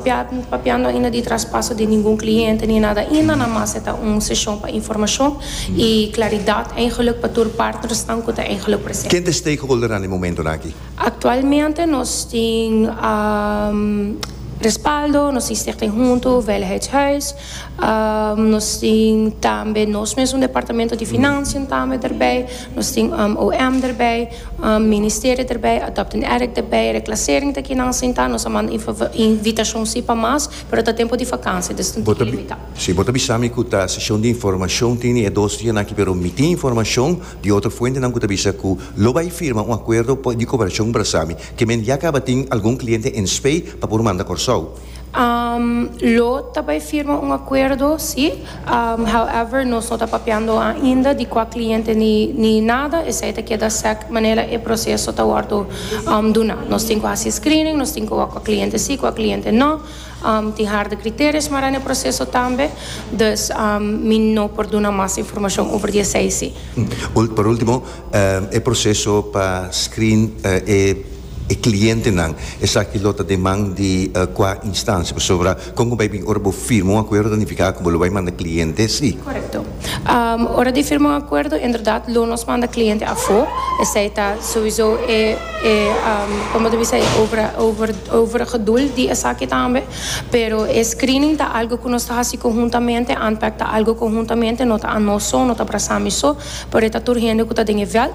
Papiando ainda di traspaso di ningun kliente ni nada ainda namas e ta un seshon pa informashon i klaridat eingeluk pa tur partnersnan ku ta eingeluk presente. Ken ta e stakeholdernan den momentonan aki? Aktualmente nos tin respaldo, nos tin Stichting Huntu, Veiligheidshuis, Nos tin tambe nos mes un departamento di financian tambe derbij. Nos tin OM derbij, ministerio derbij, adopt en erek derbij, reclassering ta kinan sin ta. Nos a manda invitacion si pa mas, pero ta tempo di vakansia dus tin tin limita. Si, bo ta bisa mi cu ta sesion di informacion tin e dos dianan aki, pero mi tin informacion di otro fuentenan cu ta bisa cu lo bay firma un acuerdo di cooperacion brasa mi, ke men ya caba tin algun cliente en Spei pa por manda Corsou. Lo ta bai firma un akuerdo, si. However, nos no ta papiando ainda di kua kliente ni nada, esei ta keda sèk manera e proseso ta wòrdu duna. Nos tin ku hasi screening, nos tin ku wak kua kliente si, kua kliente no. Tin harde kriterio smará na e proseso tambe, dus mi no por duna mas informashon over di esei, si. Por último, e proseso pa screen e. e clientenan. Esaki lo ta den man di cua instancia? Pasobra con cu bay bin ora bo firma un acuerdo ta nifica cu bo lo bay manda cliente si? Correcto. Ora di firma un acuerdo inderdat lo nos manda cliente afo, esey ta sowiso e e como bo ta bisa e over over overige doel di esaki tambe. Pero e screening ta algo cu nos ta haci conhuntamente, ANPEC ta algo conhuntamente, no ta anoso, no ta brasami so, pero e ta tur hende cu ta den e veld.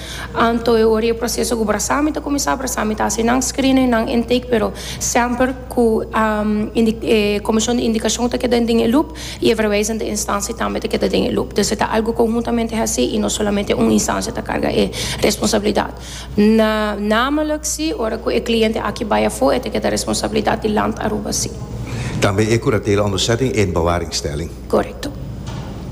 Anto e ora e proseso ku brasa mi ta kuminsá brasa mi ta hasi nan screening nan intake pero semper ku e komishon di indikashon ta keda den e loop i e verwijzende instansie tambe ta keda den e loop dus e ta algu konhuntamente hasi i no solamente un instansie ta karga e responsabilidat namelijk si ora ku e kliente aki bai afó e ta keda responsabilidat di Land Aruba si. Tambe e kuratela onderzetting en bewaringstelling. Korekto.